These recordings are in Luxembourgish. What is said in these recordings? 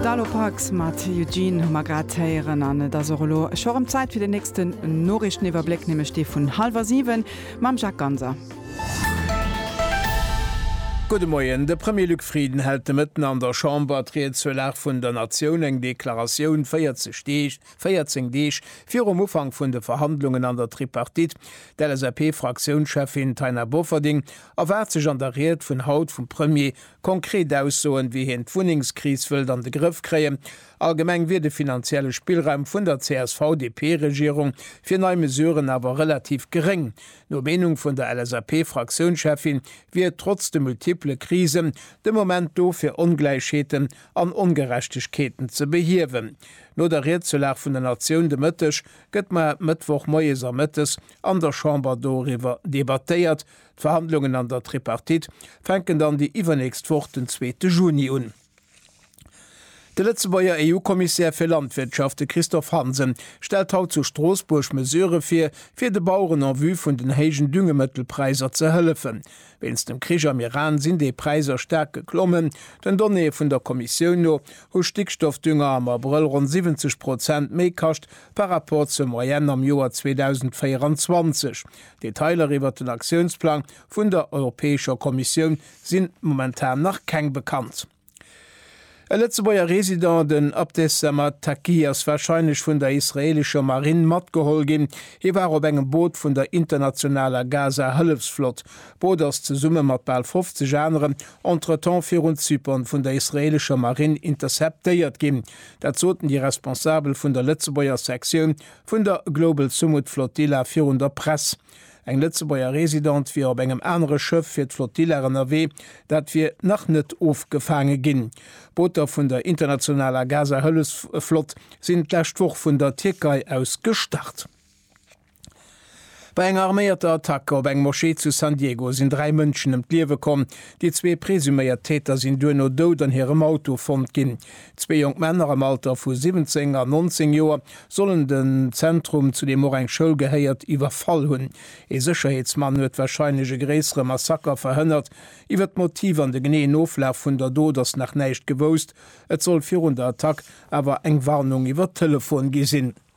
D'Alopax mat Eugene hu mer grad héieren an et ass och elo scho erëm Zäit fir den nächsten Noriichteniwwerbléck, nämlech dee vun hallwer siwen mam Jacques Ganser. Gudde Moien. De Premier Luc Frieden hält de Mëtten an der Chamber d'Ried zur Lag vun der Natioun, eng Deklaratioun 40 Deeg, 14 Deeg virum Ufank vun de Verhandlungen an der Tripartite. D'LSAP-Fraktiounscheffin Taina Bofferding erwaart sech an der Ried vun haut vum Premier, Konkret Aussoen, wéi hien d'Wunnengskris wëllt an de Grëff kréien. Allgemeng wier de finanzielle Spillraum vun der CSV-DP-Regierung fir nei Mesuren awer relativ geréng. No Meenung vun der LSAP-Fraktiounscheffin wier et trotz de multiple Krisen de Moment do fir Ongläichheeten an Ongerechtegkeeten ze behiewen. No der Ried zur Lag vun der Natioun de Mëtteg gëtt mar Mëttwoch moies a mëttes an der Chamber doriwwer debattéiert, D'Verhandlungen an der Tripartite fänken dann déi iwwernächst Woch, den zweete Juni un. De Lëtzebuerger EU-Kommissär fir Landwirtschaft, de Christophe Hansen, stellt haut zu Stroossbuerg Mesurë vir, fir de Baueren en vue vun den héijen Düngemëttelpräisser ze hëllefen. Wéinst dem Krich am Iran sinn déi Präisser staark geklommen. Den Donnéeë vun der Kommissioun no hu Stickstoffdünger am Abrëll ronn 70 Prozent méi kascht par rapport zur Moyenne am Joer 2024. Detailer iwwert den Aktiounsplang vun der Europäescher Kommissioun si momentan nach keng bekannt. E Lëtzebuerger Resident, den Abdessamad Taqi, ass warscheinlech vun der israeelescher Marinn matgeholl ginn. Hie war op engem Boot vun der internationaler Gaza-Hëllefsflott. D'Boot ass zesumme mat bal 50 aneren entretemps virun Zypern vun der israeelescher Marinn interceptéiert ginn. Dat soten déi Responsabel vun der Lëtzebuerger Sektioun Vun der Global Sumud Flotilla virun der Press. Eng Lëtzebuerger Residente wier op engem anere Schëff fir d'Flotilla ënnerwee, dat wier nach net ofgefaange ginn. Booter vun der internationaler Gaza-Hëllefsflott sinn d'lescht Woch vun der Tierkei aus gestart. Bei enger arméierter Attack op eng Moschee zu San Diego sinn dräi Mënschen ëm d'Liewe komm. Déi zwee presuméiert Täter sinn duerno dout an hirem Auto fonnt ginn. Zwee jonk Männer am Alter vu 17 an 19 Joer sollen den Zentrum, zu deem och eng Schoul gehéiert, iwwerfall hunn. Ee Sécherheetsmann huet warscheinlech e gréissere Massaker verhënnert. Iwwer d'Motiv an de geneeën Oflaf vun der Dot ass nach näischt gewousst. Et soll virun der Attack awer eng Warnung iwwer Telefon gi sinn.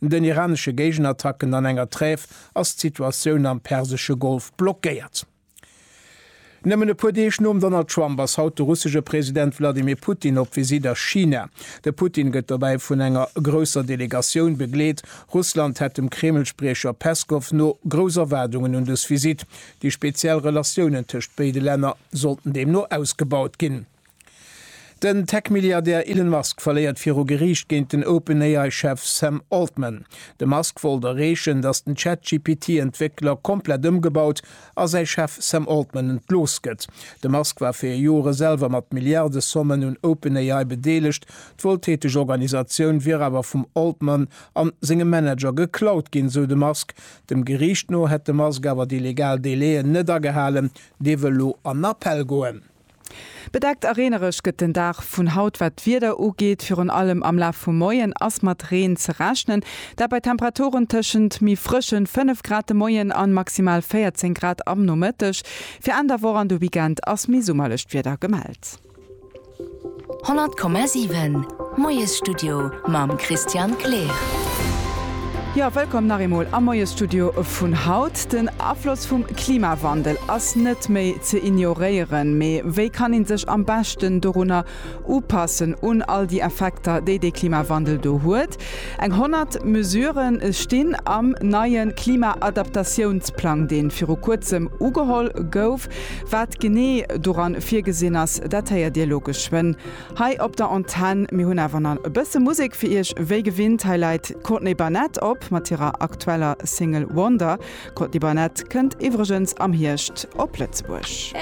No den iranesche Géigenattacken an enger Trêve ass d'Situatioun am persesche Golf blockéiert. Nëmmen e puer Deeg nom Donald Trump ass haut de russesche President Wladimir Putin op Visitt a China. De Putin gëtt dobäi vun enger grousser Delegatioun begleet. Russland hätt dem Kreml-Spriecher Peskow no grouss Erwaardungen un dës Visitt. Déi speziell Relatiounen tëscht béide Länner sollten deemno ausgebaut ginn. Den Tech-Milliardär Elon Musk verléiert viru Geriicht géint den OpenAI-Chef Sam Altman. De Musk wollt erreechen, datt den ChatGPT-Entwéckler komplett ëmgebaut a säi Chef Sam Altman entlooss gëtt. De Musk war fir Jore selwer mat Milliardesommen un OpenAI bedeelegt. D'wueltäteg Organisatioun wier awer vum Altman a sengem Manager geklaut ginn, sou de Musk. Dem Geriicht no hätt de Musk awer déi legal Délai'en net agehalen. Dee wëll lo an Appell goen. Bedeckt a reenereg gëtt den Dag vun haut. Wat d'Wieder ugeet, virun allem am Laf vum Moien ass mat Reen ze rechnen. Dat bei Temperaturen tëschent méi frëschen 5 Grad de Moien an maximal 14 Grad am Nomëtteg. Fir Enn der Woch an de Weekend ass méi summerlecht Wieder gemellt. 100,7 Moiesstudio mam Christian Kleer. Jo, wëllkomm nach eemol am Moiesstudio vun haut. Den Afloss vum Klimawandel ass net méi ze ignoréieren. Mee wéi kann ee sech am beschten dorunner upassen, un all déi Effekter, déi dee Klimawandel do huet? Eng 100 Mesurë stinn am neie Klima-Adaptatiounsplang, dee viru kuerzem ugeholl gouf. Wat genee doran virgesinn ass, dat héiert Dir elo geschwënn hei op der Antenn. Mir hunn awer nach e bësse Musek fir Iech. Wéi gewinnt, hei läit d'Courtney Barnett op mat hirer aktueller Single Wonder. D'Courtney Barnett kënnt iwwregens am Hierscht op Lëtzebuerg.